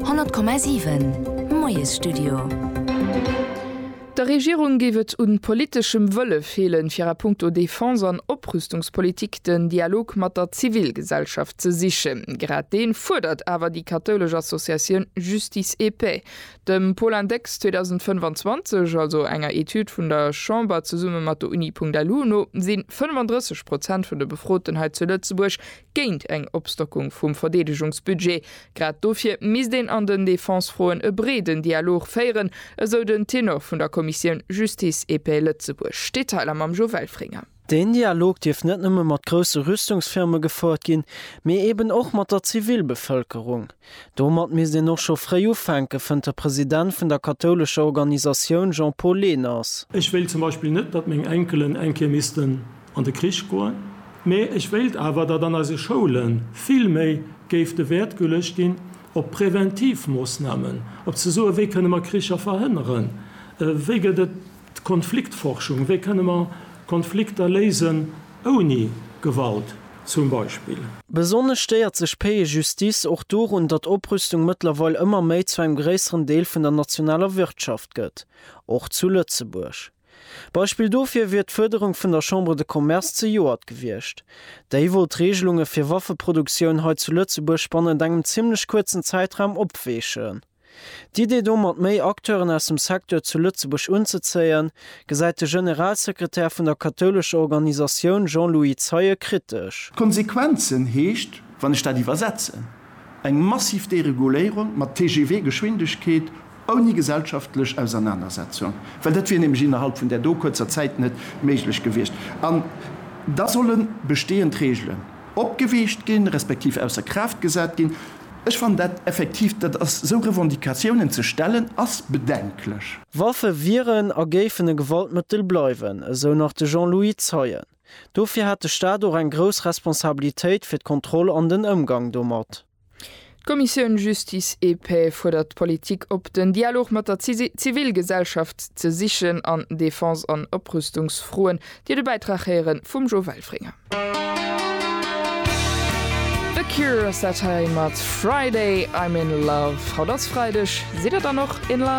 100,7 Moiesstudio. Der Regierung géif et un politeschem Wëlle feelen, fir a punkto Defense an Oprüstungspolitik den Dialog mat der Zivilgesellschaft ze sichen. Grad deen fuerdert awer déi kathoulesch Associatioun Justice et Paix. Dem Paul-Index 2025, also enger Etüd vun der Chamber zesumme mat der Uni Punkt-LU no, sinn 35 Prozent vun de Befroten hei zu Lëtzebuerg géint eng Opstockung vum Verdeedegungsbudget. Grad dofir misst een an den Defensefroen e breeden Dialog féieren, esou den Tenor vun der Kommissioun Justice et Paix Lëtzebuerg. Detailer mam Jo Welfringer. Deen Dialog dierf net nëmme mat grousse Rüstungsfirme gefouert ginn, mee eben och mat der Zivilbevëlkerung. Domat misst een och scho fréi ufänken, fënnt de President vun der kathoulescher Organisatioun Jean-Paul Lehners. Ech wéilt zum Beispill net, datt meng Enkelen eng Kéier missten an de Krich goen, mee ech wéilt awer, datt an eise Schoule vill méi géif de Wäert geluecht ginn op Präventivmoossnamen, op ze soen, wéi kënne mer Kricher verhënneren, wéi gëtt et D'Konfliktforschung, wéi kënne mer Konflikter léisen ouni Gewalt zum Beispill? Besonnesch stéiert sech Paix et Justice och dorun, datt Oprüstung mëttlerweil ëmmer méi zu engem gréisseren Deel vun der nationaler Wirtschaft gëtt, och zu Lëtzebuerg. Beispill dofir wier d'Fuerderung vun der Chambre de Commerce zejoert gewiescht. Déi wollt d'Reegelunge fir Waffeproduktioun hei zu Lëtzebuerg bannent engem zimmlech kuerzen Zäitraum opweechen. D'Idee domat méi Acteuren aus dem Secteur zu Lëtzebuerg unzezéien, gesäit de Generalsekretär vun der kathoulescher Organisatioun Jean-Louis Zeie kritesch. D'Konsequenzen heescht, wann ech dat iwwersetzen, eng massiv Dereguléierung mat TGV-Geschwindegkeet ouni gesellschaftlech Ausernanersetzung, well dat wier nämlech innerhalb vun där do kuerzer Zäit net méiglech gewiescht. An da solle bestehend Regelen opgeweecht ginn, respektiv ausser Kraaft gesat ginn. Ech fannen dat effektiv, dat ass, esou Revendicatiounen ze stellen, ass bedenklech. Waffe wieren a géifen e Gewaltmëttel bleiwen, esou nach de Jean-Louis Zeien. Dofir hätt de Staat och eng grouss Responsabilitéit fir d'Kontroll an den Ëmgang domat. D'Kommissioun Justice et Paix fuerdert d'Politik op, den Dialog mat der Zivilgesellschaft ze sichen an Defense an Oprüstungsfroen, Dir de Bäitrag héieren vum Jo Welfringer. The Cure ass dat hei mat Friday I'm in love. Haut ass Freideg, sidd der dann och in love?